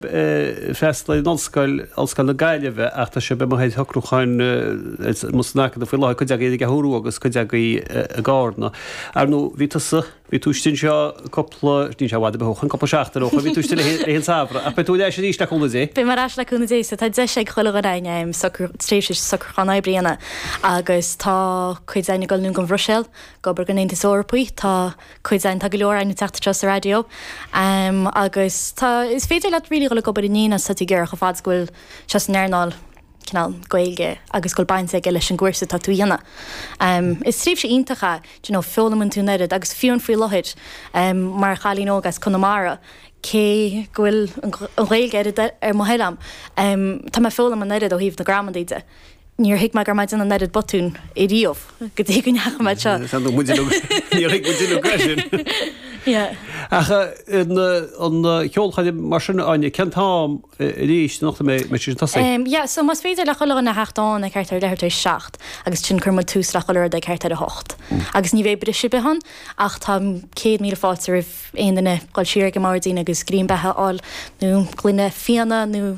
freastal ar an ollscoil, Ollscoil na Gaillimhe, ach tá sibh i mo thaobh shocrúcháin amuigh san acadamh faoi láthair, cuid agaibh ar an gCeathrú Rua agus cuid agaibh i gCarna. Ar ndóigh, bhí tusa, bhí tú istigh anseo cúpla, níl sé i bhfad ar bith ó shin, cúpla seachtain ó shin, bhí tú istigh le linn an tsamhraidh, ach beidh tú ar ais arís le cúnamh Dé. Beidh mé ar ais le cúnamh Dé, so tá deis ag chuile dhuine againn tréimhse socrúcháin oibre a dhéanamh agus tá cuid againn ag dul anonn don Bhruiséil ag obair don Aontas Eorpach, tá. cuid againn, tá go leor againn ag teacht anseo sa raidió agus tá, is féidir leat really dhul ag obair in aon áit is atá tú ag iarraidh chomh fad is go bhfuil sé san earnáil cineál Gaeilge agus go bhfuil baint aige leis an gcúrsa atá tú a dhéanamh. Is tréimhse iontach é, do you know, foghlaimn tú an oiread agus fiú faoi láthair mar chailín óg as Conamara, cé go bhfuil an Ghaeilge ar mo thoil a'm, tá mé ag foghlaim an oiread ó thaobh na gramadaí de. Níor thuig mé go raibh mé ag déanamh an oiread botún ariamh go dtí go ndeachaigh mé anseo. Tá muid uilig, níor thuig muid uilig an gá sin. Yeah. Ach an an cheolchoirm mar sin Áine, cén t-am arís anocht a mbeidh sé sin ag tosaí? Em, yeah, so más féidir le chuile dhuine a theacht ann ag thart ar a leathuair tar éis a seacht agus ansin cuirfidh muid tús le chuile rud ag thart ar a hocht. Agus ní bheidh briseadh ar bith ann ach tá céad míle fáilte roimh aon duine dhul siar ag an mboirdín agus greim beatha a fháil nó gloine fíona nó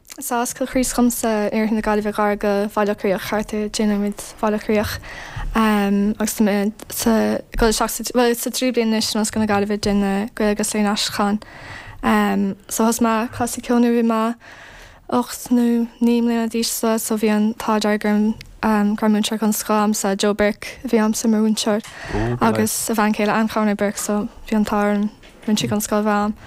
So as Cill Chríost domsa, oirthear na Gaillimhe gar do Bhaile Locha Riach thart ar deich nóiméad ó Bhaile Locha Riach agus tá mé ag dul isteach sa, bhuel sa tríú bliain anois in Ollscoil na Gaillimhe ag déanamh Gaeilge agus Léann an Aistriúcháin. So thosaigh mé ag casadh ceoil nuair a bhí mé ocht nó naoi mbliana d'aois so so bhí an t-ádh dearg orm go raibh múinteoir den scoth a'msa, Joe Burke a bhí a'msa mar mhúinteoir agus a bhean chéile Ann Conroy Burke so bhí an t-ádh orm. Rinne siad den scoth a'm.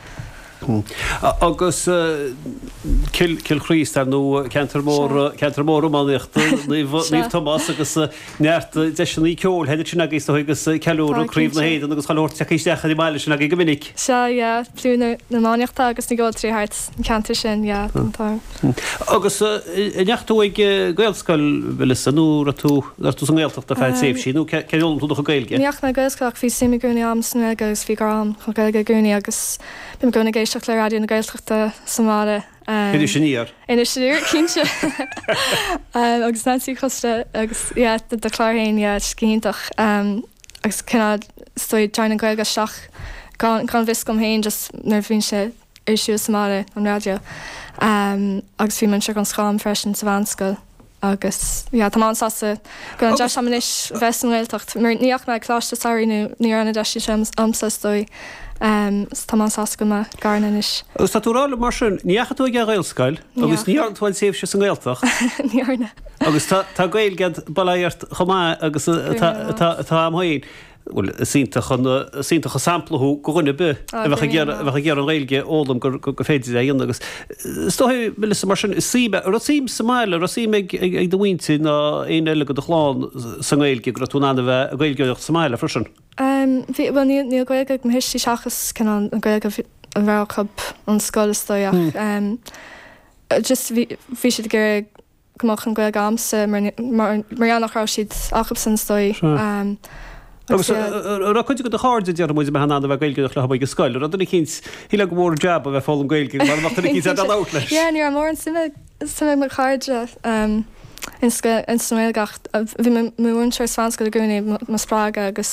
Agus Cill Chríost ar ndóigh ceantar mór, ceantar mór iománaíochta Naomh Tomás agus neart deiseanna ceoil thoir ansin agaibh is dóichí agus ceiliúradh Craobh na hÉireann agus chuile shórt ag teacht isteach ar an mbaile sin agaibh go minic. Sea, yeah, plúr na n-iománaithe agus na gceoltóirí thart an ceantar sin, yeah, tá an t-ádh orm. Agus an ndeachaigh tú ag Gaelscoil, Melissa, nó raibh tú sa nGaeltacht ar feadh tréimhsí, nó cén chaoi ar fhoghlaim tú do chuid Gaeilge? Ní dheachaigh mé ag Gaelscoil ach bhí suim i gcónaí agam san Ghaeilge agus bhí grá agam don Ghaeilge i gcónaí agus bím i gcónaí ag éisteacht le Raidió na Gaeltachta sa mbaile. Iris Aniar? Iris Aniar, cinnte! Agus Neansaí Ní Choisdealbha agus, yeah, do chlár féin, yeah, is go hiontach. Agus cineál, is dóigh, téann an Ghaeilge isteach gan gan fhios agam féin just nuair a bhíonn sé. ar siúl sa mbaile, an raidió, agus bhí múinteoir den scoth a'm freisin sa mheánscoil agus yeah tá mé an-sásta go bhfuil an deis agam anois bheith sa nGaeltacht mar ní dheachaigh mé ag coláiste samhraidh nó ní raibh an deis sin agamsa is dóigh so tá mé an-sásta go bhfuil mé i gCarna anois. Agus tá tú ag rá liom mar sin, ní dheachaigh tú ag Gaelscoil agus ní dhearna tú aon tréimhse sa nGaeltacht. Ní dheachaigh. Agus tá Gaeilge a'd baileach chomh maith agus atá a'm féin. Bhuel, is iontach an, is iontach an sampla thú go dhuine ar bith a bheadh ag iarraidh, a bheadh ag iarraidh an Ghaeilge a fhoghlaim gur, go, go féidir é a dhéanamh agus is dóigh, Melissa, mar sin, is suim, a' raibh suim sa mbaile, a' raibh suim ag, ag, ag do mhuintir ná éinne eile go do chlann sa nGaeilge go raibh tú in ann a bheith a' Gaeilgeoireacht sa mbaile freisin? Em, bhí, bhuel níl, níl Gaeilge ag mo thuistí seachas cineál Gaeilge bhí, a bheadh acub ón scoil is dóigh ach em just bhí, bhí siad ag iarraidh go mbeadh an Gaeilge agamsa mar gheall nach raibh siad acubsan is dóigh. Agus raibh cuid de do chairde déarfaidh muid a bheith in ann a bheith Gaeilgeoireacht leo taobh amuigh den scoil, raibh duine eicínt, shílfeá gur mór an jab a bheith foghlaim Gaeilge mara mbeadh duine eicínt ag labhairt leis. Yeah ní raibh mórán suime suime ag mo chairde in scoil, ins an nGaeilge ach bhí mo mhúinteoir sa mheánscoil i gcónaí mo spreagadh agus,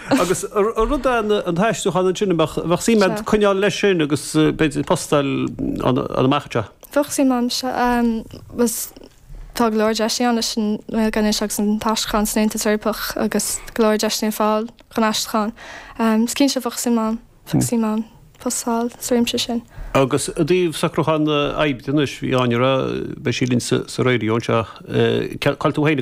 Agus rud é an t-aistriúchán ansin, an mbeadh suim a'd coinneáil leis sin agus b'fhéidir post a fháil ann amach anseo? Bheadh suim a'm. Agus tá go leor deiseanna ann leis an nGaeilge anois agus an t-aistriúchán san Aontas Eorpach agus go leor deiseanna ar fáil chun aistriúchán. Is cinnte bheadh suim a'm, bheadh suim a'm post a fháil sa réimse sin. Agus i dtaobh socrúchán oibre anois, bhí Áine a rá beidh sí linn sa Raidió anseo. Cáil tú féin ag.